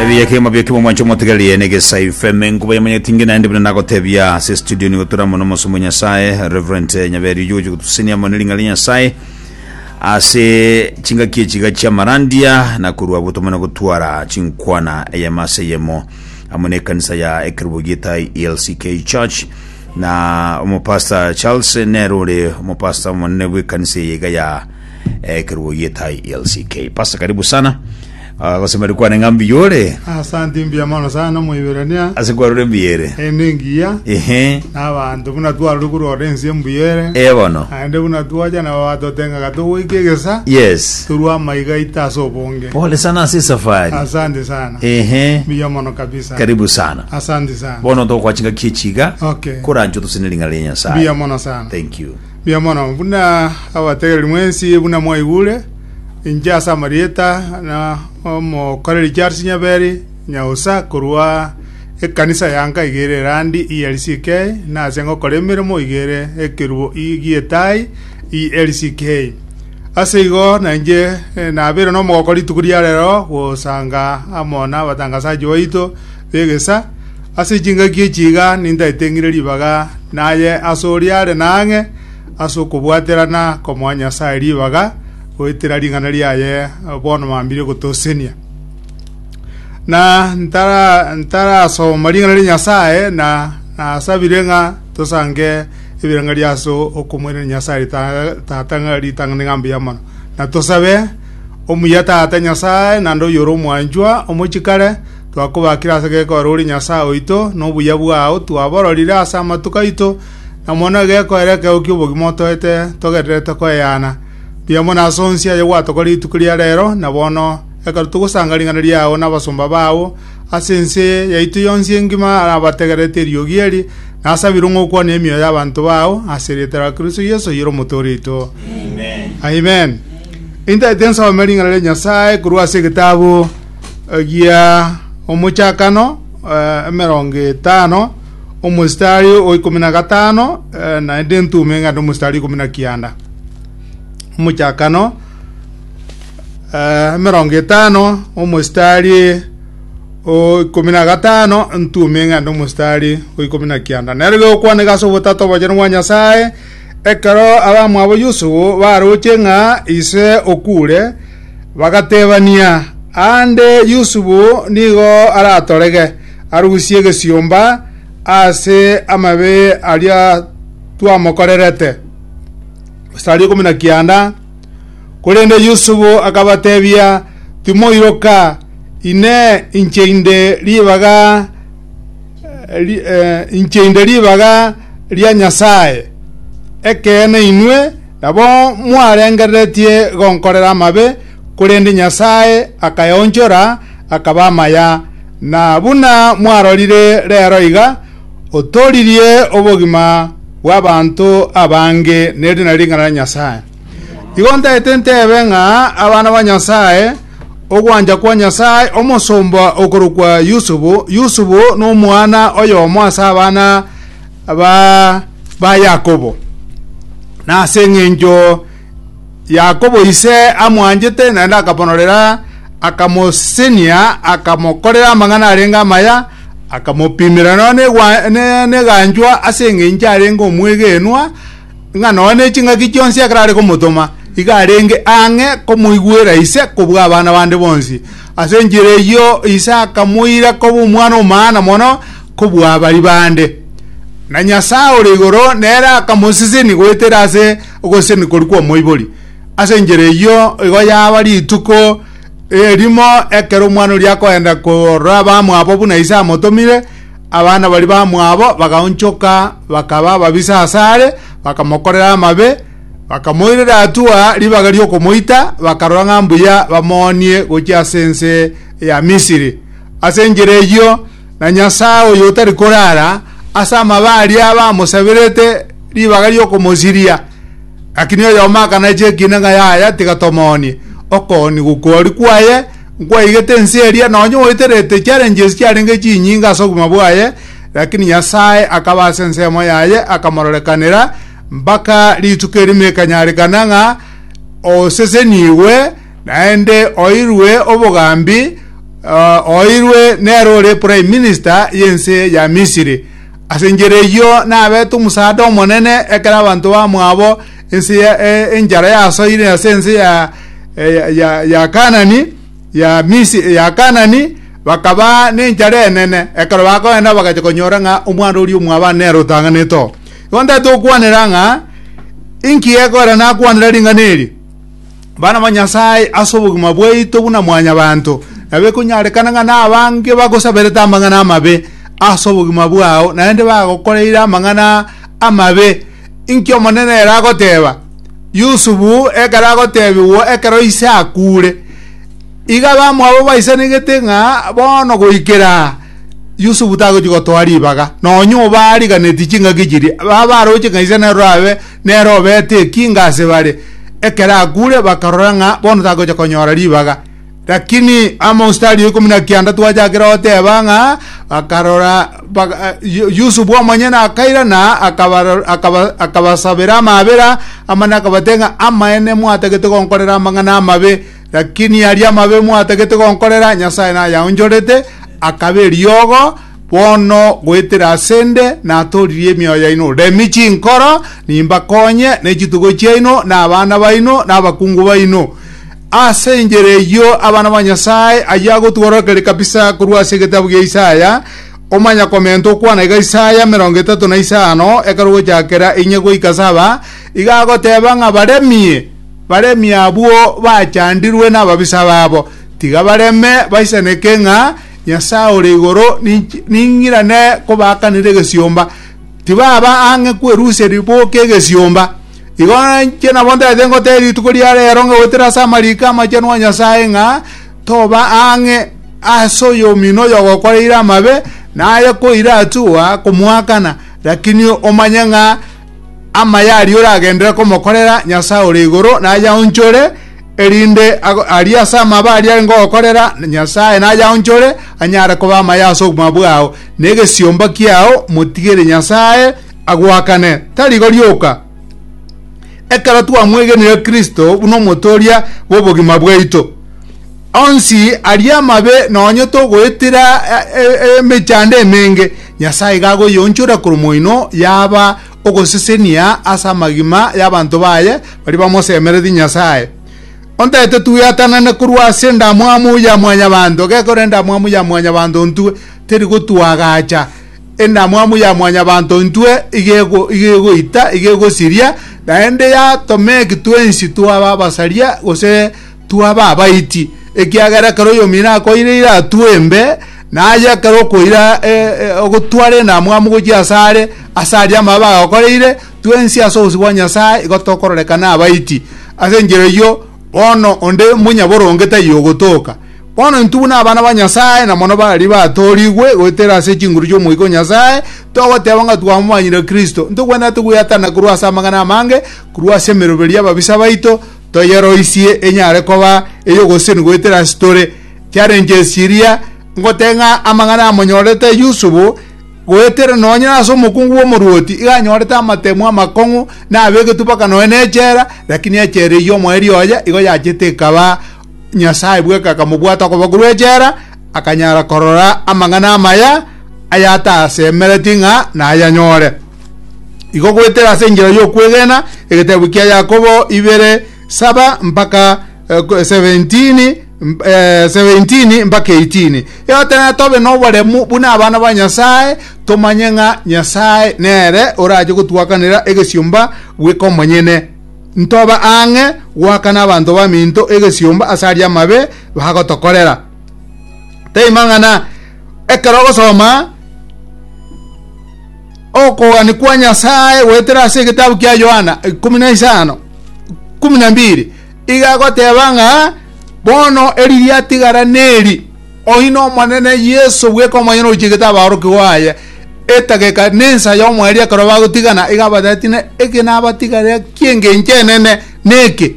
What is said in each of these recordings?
ebiya kemo byo kimo mwancho motigarie ne gesa ifeme nkuba ya manyeti ngi naende bino nagotebia se studio ni gotura mono mosomo nyasaye reverend eh, nyaberi uyo uyo gutusenia mono ringa ri nyasaye ase chingaki echiga chia marandia na kurwa botoma na gotwara chinkwana eyemo ase eyemo amo ne kanisa ya ekerubo gietai elck church na omopasta charles nero ore omopasta omonene bw'ekanisa eyeiga ya eh, keruo yetai lck pasa karibu sana Ah, gosemeri kwane ng'ambi yore asante mbuya mono sana moiberania ase kwarure mbiyere ende engiya ehe nabanto buna twarore korora ense mbuyere ebono aende buna twacha nabo batotengaga togoika egesa yes torwa amaiga aito ase obonge pole sana ase safari asante sana ehe mbuya mono kabisa karibu sana asante sana bono tokwachinga kiechiga okay korancho tosene ring'ana ria nyasaye mbuya mono sana thank you Mbuya mono, buna abategereri mwensi buna mwaigure, inche ase amarieta na omokoreri Charles Nyaberi, nyausa korwa ekanisa ya Nkai ere Irandi ELCK, nase ngokora emeremo igere ekerubo i- gi'etai ELCK. Ase igo na inche eh, nabeire nomogooko rituko ria rero gosanga amo nabatangasachi baito b'egesa, ase chingaki echi iga nintaete ng'ire ribaga naye ase oria are na ang'e ase okobwaterana komoa Nyasae ribaga, goetera ring'ana riaye bono mambire gotosenia. Na ntara ntarasoma ring'ana ria Nyasae na nasabire ng'a tosange ebirengerio ria ase okomoirana Nyasae rita- tata ng'a ritang'ani ng'a mbuya mono. Na tosabe omuya tata Nyasae naende oyore omwanchwa omochikare, Twakobakire ase gekoero ore Nyasae oito, na obuya bwao twabororire ase amatuko aito, na mono egekoero ekeo ki'obogima otoete togendererete koeana. Mbuya mono ase onsi aye gwatokorire rituko ria reero, na bono ekero togosanga ring'ana riao na abasomba bao, ase ense yaito yonsi engima abategererete eriogi eri, nasabire ng'a okwane emioyo y'abanto bao, ase erieta ria Kristo Yeso oyore Omotooria oito. Amen. Intaete nsome ring'ana ria Nyasae korwa ase egetabu egiya omochakano eh, emerongo etano omositari o ikomi na gatano eh, naende entume ng'ende omositari ikomi na kianda omochakano eh, emerongo etano omositari o ikomi na gatano entume ng'ende omositari o ikomi na kianda nero gekwaneka ase obotato obochenwa bwa nyasaye Ekero abamwabo Yusufu baroche ng'a ise okuure, bagatebania, Aande Yusufu nigo aratorege, arusie egesiomba ase amabe aria twamokorerete. Mstari ikomi na kianda Korende Yusufu akabatebia, Timoiroka, Inee, inche inde ribaga eh, inche inde ribaga ria Nyasae. Ekeene inwe nabo mwarengereretie gonkorera amabe, korende Nyasae akayaonchora akaba amaya, na buna mwarorire rero iga, otooririe obogima bw'abanto abange neriina ring'ana ria Nyasae. Igo ntaete ntebe ng'a abana ba Nyasae, ogwancha kwa Nyasae, omosomba okorokwa Yusufu, Yusufu nomwana oyomo ase abana ba, ba Yakobo. Na ase eng'encho Yakobo ise amwanchete, naende akamonorera, akamosenia, akamokorera amang'ana arenge amaya, akamopimera nonya negwa- ne- neganchwa ase eng'encho arenge omwegenwa, ng'a nonya ne ching'aki chionsi ekero are komotoma, igo arenge ang'e komoigwera Ise kobua abana bande bonsi. Ase enchera eyio Ise akamoira koba omwana omana mono kobua baria bande. Na Nyasae ore igoro nere akamosesenia goetera ase ogosesenia koria kw'omoibori. Ase enchera eyio igo yaba rituko erimo ekero omwana oria akoenda korora abamwabo buna Ise amotomire, Abana baria bamwabo bagaonchoka, bakaba ababisa asare, bakamokorera amabe, bakamoirera atua ribaga ri'okomoita, bakarora ng'a mbuya bamoonie gochia ase ense ya Misiri. Ase enchera eyio, na Nyasae oyo otari korara, ase amabe aria bamosaberete ribaga ri'okomosiria, lakini oyomo akanachia ekiina ng'a yaya tiga tomoonie, okoonigu kwori kwaye, Nkwaigete ense eria, nonya oeterete challenges chiarenge chinyinge ase obogima bwaye, lakini Nyasae akaba ase ensemo yaye akamororekanera mpaka rituko erimo ekanyarekana ng'a osesenigwe naende oirwe obogambi uh, oirwe nero ore prime minister y'ense ya Misiri. Ase enchera eyio nabete omusaada omonene ekero abanto bamwabo Ense ya e- enchara yasoire ase ense ya e- ya- ya- ya Kanani ya Misiri ya Kanani bakaba nenchara enene ekero bakoenda bagacha konyora ng'a omwana oria omwabani nere otang'anete oo igo ntete okwanera ng'a inki ekora nakwanera ring'ana eri bana ba nyasaye ase obogima bwaito buna mwanyabanto nabo ekonyarekana ng'a nabange bagosaberete amang'ana amabe ase obogima bwao naende bagokoreire amang'ana amabe Inki Omonene ere agoteba? Yusufu ekero agotebigwa ekero ise akuure, igo abamwabo baisanigete ng'a bono goikera aa Yusufu tagochia gotoa ribaga, nonya obo aariganeti chingaki chiria, baba aroche ng'a ise nere orabe nere obete ekinga ase bare. Ekero akuure bakarora ng'a bono tagocha konyora ribaga. Lakini among'sita aria ikomi na kianda twachakire goteba ng'a bakarora baka- Yu- Yusufu omonyene akairana akabaro- akaba- akabasabera amabera amane akabate ng'a amaene mwatagete gonkorera amang'ana amabe lakini aria amabe mwatagete gonkorera Nyasae nayaonchorete akaba eriogo bono goetera asende natoririe emioyo yaino remi chinkoro nimbakonye ne chitugo chiaino na abana baino na abakungu baino Ase enchera eyio abana ba Nyasae, ayio agotugwa rokere kabisa korwa ase egetabu gia Isaya, omanyakomenta okwana iga Isaya emerongo etato na isano, ekero gochakera inye goika saba, iga agoteba ng'a baremie, baremie abwo bachandirwe nababisa babo, tiga bareme, baisaneke ng'a Nyasae ore igoro ninch- ning'irane kobaakanera egesiomba, tibaba ang'e kwerusia riboke egesiomba. Igo inche nabo ntaete ngotebia rituko ria rero ng'a goetera ase amariko amachenu a Nyasae ng'a toba ang'e ase oyomino oyo ogokoreire amabe, naye koira atugwa komoakana, lakini omanye ng'a amaya aria oragenderere komokorera Nyasae ore igoro nayaonchore, erinde aria ase amabe aria arenge ogokorera Nyasae nayaonchore, anyare koba amaya ase obogima bwao, na egesiomba kiao motigere Nyasae, agoakane, tarigo rioka, ekero twamwegenire Kristo buna omotooria bw'obogima bwaito. Onsi aria amabe nonye togoetera emechando emenge, Nyasae iga agoyeonchora korwa moino yaba ogosesenia ase amagima y'abanto baye baria bamosemeretie Nyasae. Ontagete twiatanane korwa ase endamwamu ya mwanyabanto, gekore endamwamu ya mwanyabanto ntwe, teri gotwagacha. Endamwamu ya Mwanyabaanto intwe igegoita, igegosiria, naende yatoma eki twensi twaba abasaria gose twaba abaiti, ekiagera ekero oyomino akoire ira atue embe, na aye ekero okoira ogotwara endamwamu gochia ase are, ase aria amabe agakoreire, twensi ase obosio bwa Nyasae igo tokororekana abaiti. Ase enchera eyio, bono onde monyaboronge taiyo ogotoka. Bono intwe buna abana ba Nyasae, na mono baria batoorigwe goetera ase chinguru chi'Omoika o Nyasae, togoteeba ng'a twamomanyire Kristo, ntogwenerete gweatana korwa ase amang'ana amange, korwa ase emeroberi y'ababisa baito, toyeroisie enyare koba ey'ogosesenia goetera ase tore. Challenges chiria ngotee ng'a amang'ana amonyorete Yusufu, goetera nonye nase omokungu bw'omorwoti, iga anyorete amatemo amakong'u, na abegetwe mpaka nonya nechela, lakini echela eyio omoerio oye igo yachete ekaba Nyasae bweka akamobwata okoba korwa echela, akanyara korora amang'ana amaya ayatasemereti ng'a nayanyore. Igo goetera ase enchera y'okwegena egeteebo kia Yakobo ibere saba mpaka eh, 17 eh, 17 mpaka 18 eotenena tobe noboremu buna abana ba Nyasae tomanye ng'a Nyasae nere orache gotwakanera egesiomba bweka omonyene ntobe ang'e goaka n'abanto baminto egesiomba ase aria amabe bagotokorera. Teima ng'ana ekero ogosoma okogani kwa Nyasae goetera ase egetabu kia Yohana ikomi na isano kumi na mbiri iga agoteba ng'a bono eri riatigara neri Oino Omonene Yeso bweka omonyene ochegete abaorokigwa baye, etageka nensa y'omoerio ekero bagotigana, iga abatebitie, ne eke nabatigarera ki'engencho enene neke,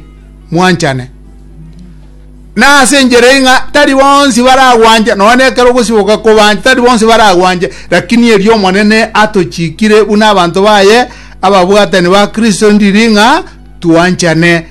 mwanchane. Na ase enchera eye ng'a tari bonsi baragwanche, nonya nekero ogosiboka kobanche, tari bonsi baragwanche, lakini erio Omonene atochikire buna abanto baye, ababwatani ba Kristo ndiri ng'a twanchane.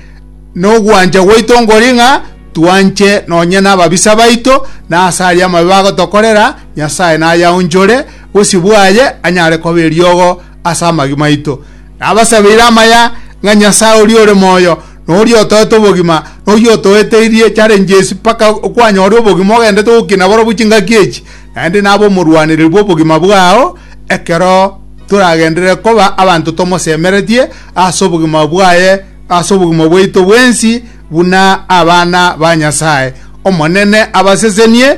Nogwancha gwaito nkori ng'a twanche nonya nababisa baito, na ase aria amabe bagotokorera, Nyasae nayaonchore, bosibwa aye anyare koba eriogo ase amagima aito. Nabasabeire amaya ng'a Nyasae oria ore moyo, na oria otoete obogima, na oyio otoeteirie challenges mpaka kwanyore obogima ogendete gokina borobwo chingaki echi, naende nabe omorwanereri bw'obogima bwao ekero toragenderere koba abanto tomosemeretie ase obogima bwaye ase obogima bwaito bwensi buna abana ba Nyasae. Omonene abasesenie.